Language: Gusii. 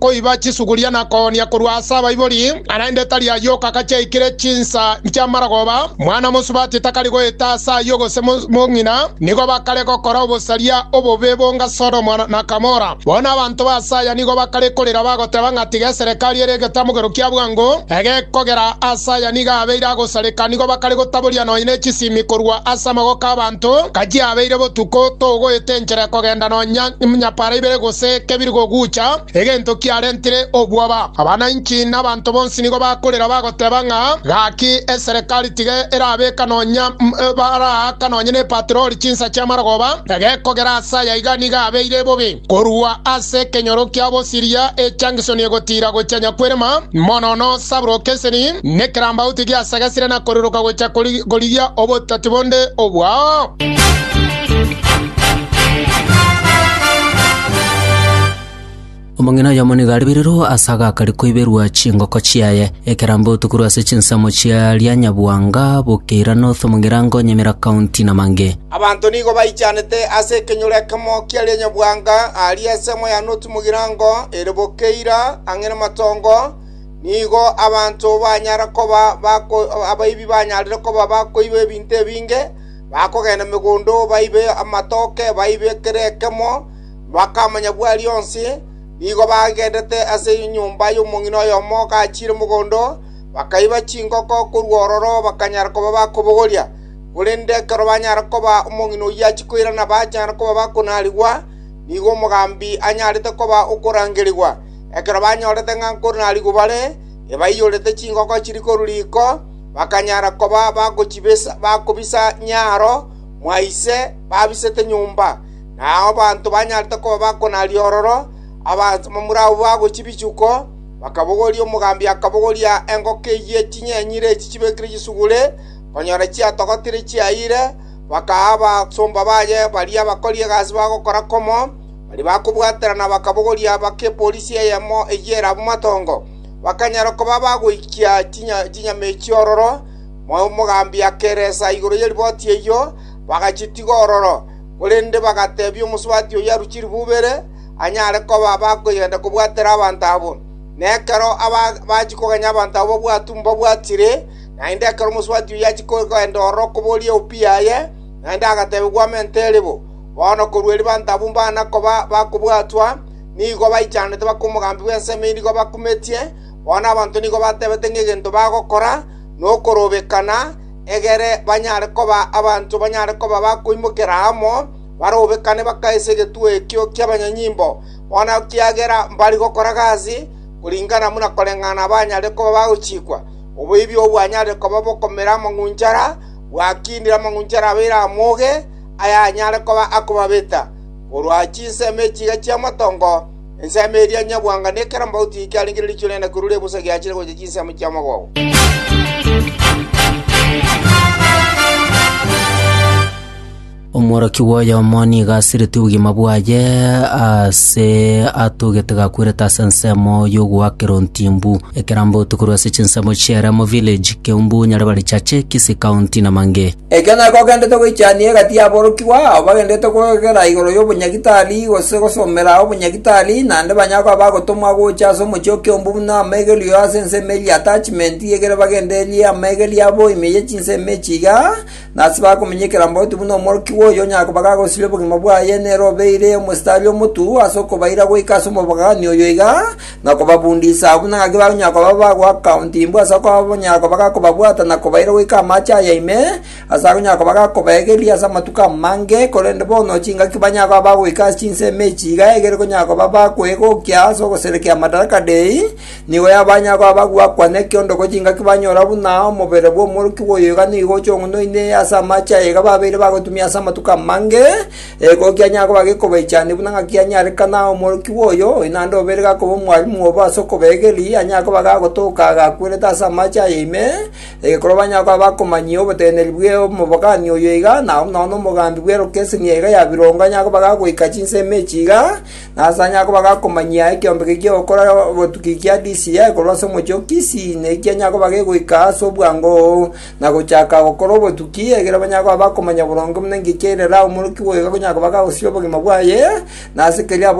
koiba chisuguria na koonia korwa ase abaibori, na naende tari ayio okaka chiaikire chinsa chi'amaragoba. Mwana mosubati takari goeta ase ayio gose mong'ina. Nigo bakare gokora obosaria obobe bonga Sodomu na Gomora. Bono abanto b'aase aya nigo bakare korera bagoteba ng'a tiga eserekari ere egetamogero kia bwango egekogera ase aya nigo abeire agosareka. Nigo bakare gotaboria nonya ne chisimi korwa ase amagoko 'abanto, nka chiabeire botuko togoeta enchera ekogenda nonya Nyapaara ibere gose kebiri kogucha, egento kiarentire obwoba. Abananchi na abanto bonsi nigo bakorera bagoteba ng'a, Gaki eserekari tiga erabeka nonya baraaka nonya nepatroli chinsa chi'amarogoba, egekogera ase aya iga nigo abeire bobe. Korwa ase ekenyoro kia bosiria echangisoni egotiira gochia nyakwerema, monono sabrokeseni, nekerambauti giasagasire na koriroka gochia korigia obotati bonde obwao. Omong'ina oyomo nigo aribirirwe ase agakari koiberwa chingoko chiaye. Ekerambe otukurwe ase chinsemo chia Rianyabwanga, Bukeira North, Mugirango, Nyamira County na Mange. Abanto nigo baichanete ase ekenyoro ekemo kia Rianyabwanga aaria ensemo ya North Mugirango ere Bukeira ang'e na Matongo, nigo abanto banyara koba bako abaibi banyarire koba bakoiba ebinto ebinge, Bakogenda megondo baibe amatoke baibe kera ekemo, bakamanya bwari onsi. Nigo bagendete ase enyomba y'omong'ina oyomo gachiire mogondo, bakaiba chingoko korwa ororo bakanyara koba bakobogoria. Korende ekero banyare koba omong'ina oyio achia koirana bachande koba bakonarigwa, nigo omogambi anyarete koba okorangerigwa. Ekero banyorete ng'a nkonarigwa bare, ebaiyorete chingoko chiri korwa riko. bakanyara koba bagochibisa bakobisa nyaaro mwa ise babisete nyomba, na abanto banyarete koba bakonaria ororo, abamura abwo bagochia bichuko, bakabogoria omogambi akabogoria engoko eyio ye chinyenyire echi chibekire chisugure, konyora chiatogotire chiayire, bakaa abasomba baye baria abakori egasi bagokora komo, baria bakobwaterana bakabogoria baka epolisi eyemo eyio erabu matongo. bakanyara koba bagoikia chinyama echio ororo, omogambi akeresa igoro ye riboti eyio, bagachitiga ororo. Korende bagatebia omosubati oyio arue chiribuba ere, anyare koba bakoyenda kobwatera abanto abwo. Na ekero bachia kogenya abanto abwo bobwatu mbabwatire, naende ekero omosubati oyio achia kogenda ororo koboria eopu yaye, naende agateebigwa amente ere bo. Bono korwa ribaanto abwo mbana koba bakobwatwa, nigo baichanete bakwa omogambi bw'ensemo inigo bakumetie, bono abanto nigo batebete ng'a egento bagokora nokorobekana, egere banyare koba abanto banyare koba bakoimokera amo barobekane bakaise egetuo ekio ki'abanyanyimbo, bono ekiagera mbari gokora gasi koringana buna koreng'ana abanyare koba bagochikwa. Oboibi obwo bwanyarire koba bokomera amang'unchara, bwakindire amang'unchara abeire amoge, ayanyare koba akobabeta. Korwa chinsemo echiiga chi'amatongo, ensemo eria nyabwangano ekero mbauti eye kiarengire riichwe riane korwa ribusa giachire gocha chinsemo chi'amagogo. Omworokia bw'oyomo nigo asiretie obogima bwaye ase atogete gakwerete ase ensemo y'ogoakera ontimbu. Ekerambauti korwa ase chinsemo chi'Eremo Village, Keumbu, Nyaribari Chache, Kisii County na Mange. Ekio nakio ogendete goichania egati y'aborokigwa ao bagendete kogera igoro y'obonyagitari gose gosomera obonyagitari, naende banyare koba bagotomwa gocha ase omochie o kiombu buna amaigerio ase ensemo eria attachment egere bagendererie amaigerio abo ime ye chinsemo echi iga, na ase bakomenyekera mbauti buna omorokigwa oyio onyare koba gagosiria obogima bwaye nere obeire omositari omotuo ase okobaira goika ase omobogani oyo iga, na kobabundisa agwo, na ngaki bagonyara koba abagwo akauntimbu ase okonyara koba gakobabwata na kobaira goika amache aya ime, ase akonyara koba gakobaegeria ase amatuko amange, korende bono chingaki banyare koba bagoika ase chinsemo echi iga egere konyara koba bakwegokia ase ogoserekia Madaraka Dei, nigo banyare koba bagoakwa nekiondoko chingaki banyora buna omobere bw'omworokigwa oyo iga nigo ochong'unoine ase amache aya iga babeire bagotumia ase amatuko amange, Ego kianyaa koba gekobaichania buna ng'a kianyarekana omorokigwa oyo, oyo naende obeire gakoba omwarimu obo ase okobega erii, anyare koba gagotoka agakwerete ase amache aye ime, egekorwa banyare koba bakomanyia oboteneneri bw'omobogani oyo iga, na buna onye omogambi bw'erokeseni yaye iga ya birongo anyare koba gagoika chinsemo echi iga, na ase anyare koba gakomanyia ekeombege ki'ogokora botuki kia DCI korwa ase omochie o Kisii, naki kianyaa koba gegoika ase obwango. na gochaka gokora obotuki, ekiagera banyare koba bakomanya boronge buna engaki eire Lawi omorokia bw'oigo, akonyare koba kagosia obogima bwaye, na ase keria aborokigwe.